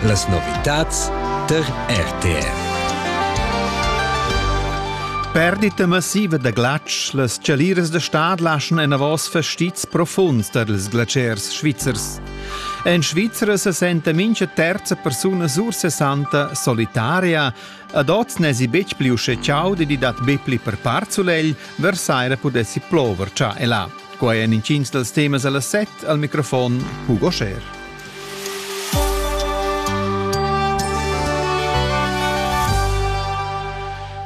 Las novitads tar RTR. Perdita massiva da glatsch, las chaliras da stad laschan enavos fastizs profunds tar ils glatschers svizzers. En Svizra se senta mincha terza persuna sursessanta solitaria Ad oz n'èsi betg pli uschè chaud ed i dat be pli per part sulegl, vers saira pudessi plover già e là. Quai èn intgins dals temas a las set al microfon Hugo Scher.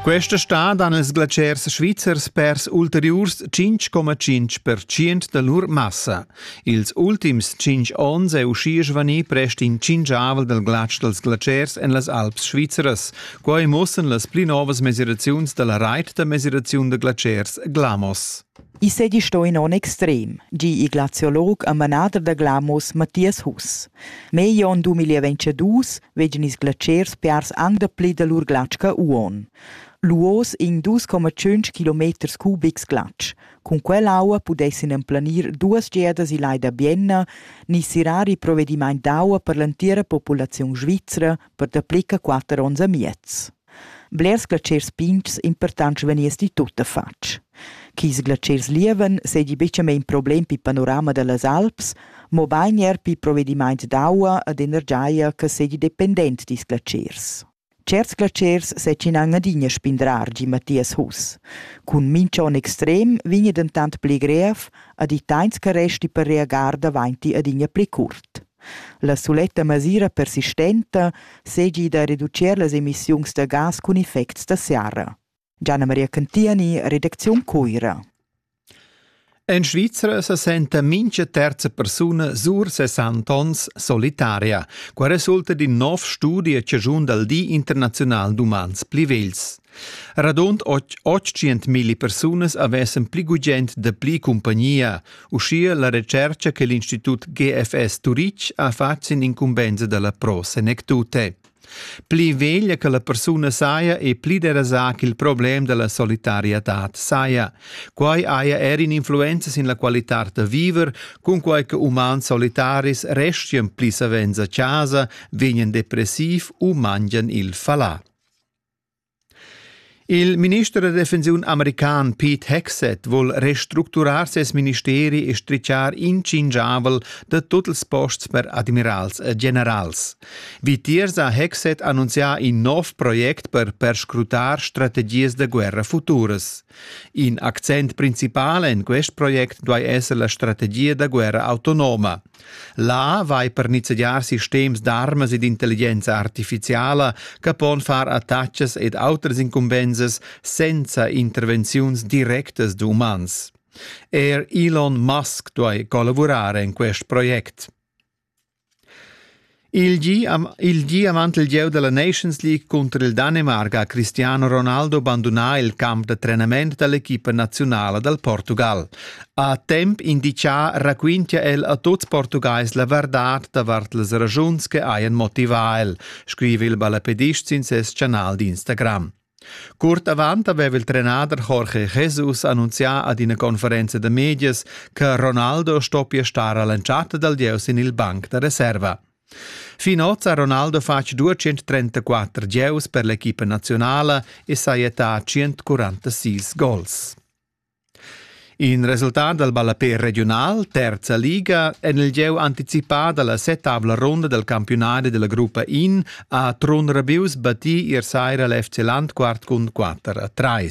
Questa stad han ils glaciers svizzers pers ulteriurs 5,5% da lur massa. Ils ultims tschinch ons è uschia svanì prest in tschinchavel dal glatsch dals glatschers en las Alps svizras. Quai mussan las pli novas mesiraziuns da la rait da mesiraziun da glatschers Glamos. I segi sto in on extrem, gi il glaziolog e manader da Glamos Matthias Huss. Meglio on 2022 vegin ils glatschers piars anc dapli da lur glatsch che uon. Luos in 2,5 km cubics glatsch, Cun quell'aua pudessan emplanir duas giadas il lai da Bienna ni sirar il provedimaint d'aua per l'entira populaziun svizra per dapli che quatter onns e miez. Blers glatschers pintgs importants vegniesti tuttafatg. Chis glatschers lieven seigi buca mein problem pi panorama dallas Alps, mobein er pi provedimaint d'aua ed energia che seigi dependent dils glatschers. Certs glaschers setginan adina spindrar giu Mathias Huss. Cun mincha onn extrem vegna dentant pli grev ad i tains che resti per reagar davanti adina pli curt. La suletta masira persistenta seigi da reducir las emissiuns da gas cun effects da serra. Gianna Maria Cantiani, redacziun Cuira. En Svizra se senta mincha terza persuna sur 60 ons solitaria, qua resulta din nov studi a ciagiun dal Di internazional d'umans pli vegls. Radund 800.000 persunas avessen pli gugent da pli compagnia, uschia la recerca che l'Institut GFS Turic ha fatg sin incumbensa dalla Pro Senectute. Pli veglia che la persuna saja e pli derasà ch'il problem da la solitariadad saja. Quai haja er in'influenza sin la qualitad da viver, cunquai che umans solitaris restian pli savens a chasa, vegnan depressiv u mangian il falà. Il minister da defensiun american Pete Hegseth vuol restructurar ses ministeri e strichar incingiavel da tut ils posts per admirals e generals. Vitiers ha Hegseth annunzià in nov project per perscrutar strategias da guerra futuras. In accent principal en quest project duai esser la strategia da guerra autonoma. Là vai per nizzegiar sistems d'armas ed intelligenza artificiala che pon far attachas ed autras incumbensas senza intervenziuns directas d'umans. Er Elon Musk duai collavurar en quest project. Il gi, il gi ha mantelgieu dalla Nations League cunter il Danemarc ha Cristiano Ronaldo bandunà il camp da trenament dall'equipa naziunala dal Portugal. A temp indicà raquintia el a tuts Portugais la verdad davart las ragiuns che hajan motivà el, scriva il ballapedist sin ses chanal d'Instagram. Curt avant aveva il trenader Jorge Jesus annunzià ad ina conferenza da medias che Ronaldo stoppia star a l'entschatta dal gieu sin il banc da reserva. Fin oz ha Ronaldo fatg 234 gieus per l'equipa nazionala e sajettà 146 gols. In resultat dal ballapè regiunal terza liga en il gieu anticipà da la settavla ronda dal campiunadi della gruppa In ha Trun Rabius battì ier saira l'FC Landquart cun 4 a 3.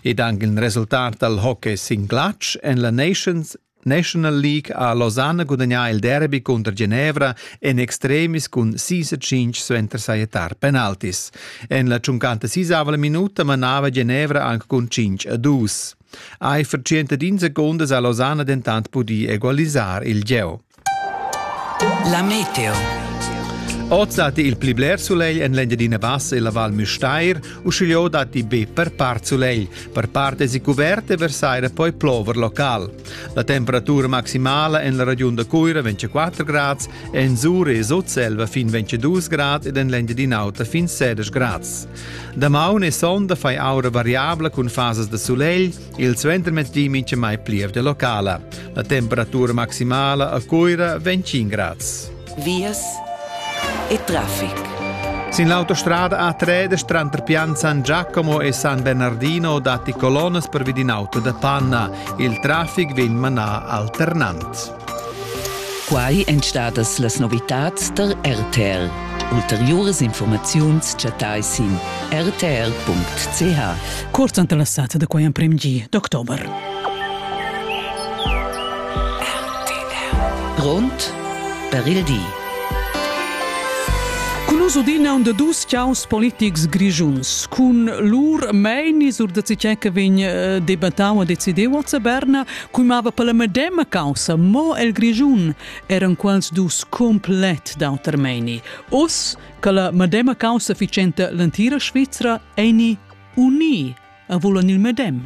Ed anche il resultat dal hockey sin glatsch en la Nations National League ha Losanna gudagnà il derby cunter Genevra en extremis cun sis e tschintg suenter sajettar penaltis. En la tschuncanta sisava la minuta manava Genevra anc cun cinc a dus. Eifer 110 secondas ha Losanna dentant pudì egualisar il gieu. La Meteo Oz datti il pli bler sulegl en l'Engiadina Bassa e la Val Müstair, uschigliò datti be per part sulegl. Per part èsi cuvert e versaira poi plover local. La temperatura maximala en la regiun da Cuira vegn 4 grads, en Sur e Sutselva fin 22 grad ed en l'Engiadin'Auta fin 16 grads. Damaun e sonda fai aura variabla cun fasas da sulegl, il suentermettì mincha mai plievgia locala. La temperatura maximala a Cuira vegn 5 grads. vias e traffic. Sin l'autostrada A3 tranter Pianzan Giacomo e San Bernardino datti colonnas per vid in auto da panna. Il traffic vegn manà alternant. Quai èn stadas las novitads tar RTL. Ulteriuras informaziuns chattai sin rtl.ch. Curt ante la sata da quai emprim gi d'october. RTL. Grond per il di. Cun us udina un da dus chaus politics grischuns. Cun lur meini sur da cicè che vegn eh, debattau e decideu a Zaberna, cumava per la medema causa, mo el grischun eran quels dus complet d'auter meini. Us, che la medema causa ficenta l'antira Svizra eni uni e vulan il medem.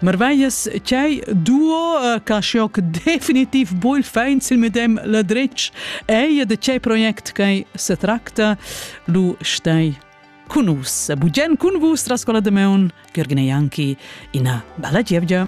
Marveias chei duo uh, ca schoc definitiv bol feins il medem la dretg ei de chei project che se tracta lu stei cun us. Bugen cun vus trascola de meun, Gergine Ianchi, ina bella gievgia.